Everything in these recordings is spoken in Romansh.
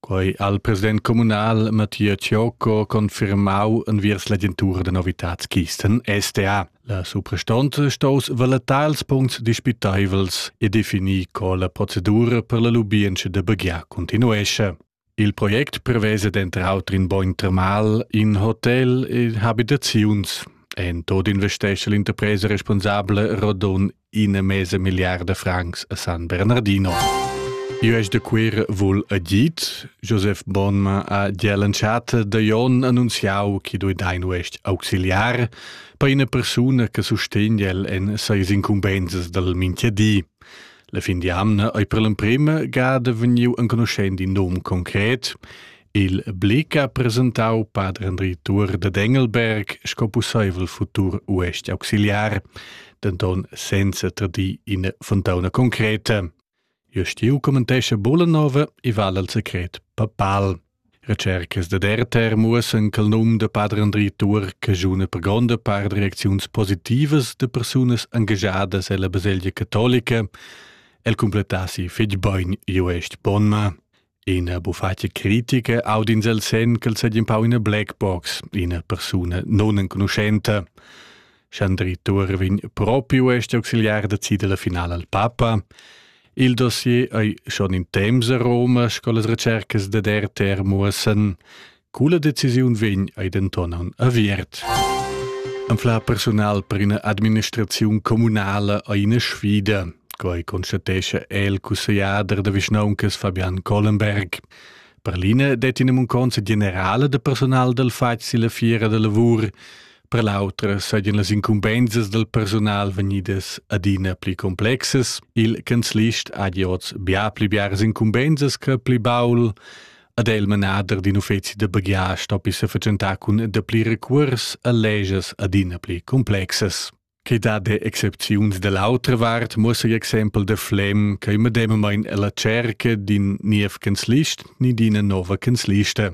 Quei al president communal Mattia Ciocco confirmau enviers l'agentura da novitats Kisten STA. La suprastonza stos valettar als puncts dispiteivels e definir co la procedura per la lubientscha da baghiar continuesce. Il project prevesa denter auter in bogn termal, in hotel e habitaziuns. En tot investesce l'interpresa responsabla Rodon ina mesa miliarda francs a San Bernardino. Io es de quir vul a dit, Josef Bonma a Dielanchate da Jon annunziau chi dui dein uest auxiliar per ina persuna che sustegn el en seis incumbenzas dal Minchedi. La fin di amna ei per l'emprema gada vegniu enconuschend in nom concret, Il Blick ha presentau pader Andri Tuor da Engelberg sco pusseivel futur uestg auxiliar, denton senza tradir ina fontauna concreta. Jostiu commentescha Bollanova e vala al secret papal. Recercas da Derter muossen che il num da pader Andri Tuor cagiuna per gronda part reacziuns positivas da persunas engagiadas ella baselgia catolica. El completassi fetg bein Joest Bonma. Ina bufatga critica audins el sen ch'el seigi empau ina black box, ina persuna non enconuschenta. Schandri Tuor vegn propiu este auxiliar da cida la finala al papa. Il dossier ei schon in temps a Roma, sco las recercas da der muossen. Quella decisiun vegn ei denton aviert. Anfla personal per ina administraziun communala ei ina sfida, quei constatescha el cussegliader da vischnauncas Fabian Collenberg. Per l'ina det in munconza generale de personal del fatg la fiera de lavur, per l'autra sajan las incumbensas del personal vegnidas adina pli complexes. Il canzlist ha giots bia pli biars incumbensas che pli baul. ad el manader d'in uffeci da baghias stoppi se fatschentar cun dapli recuors a legias adina pli complexas. Che dad excepziuns dall'autra vart muossa l'exempel da Flem che medemamain la cerca d'in niev canzlist ni d'ina nova canzlista.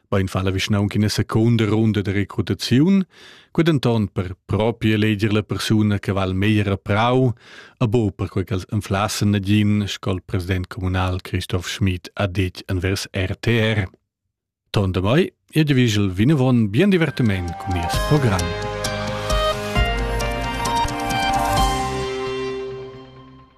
Bein fa la vischnaunca ina seconda runda de recrutaziun, Que denton per propi eleger la persuna che val meglier a Prau, a bo per quei ch'els enflassen nagin, scol president communal Christoph Schmid ha detg envers RTR. Ton da mai, e de vigel vinavon bien divertiment con nies program.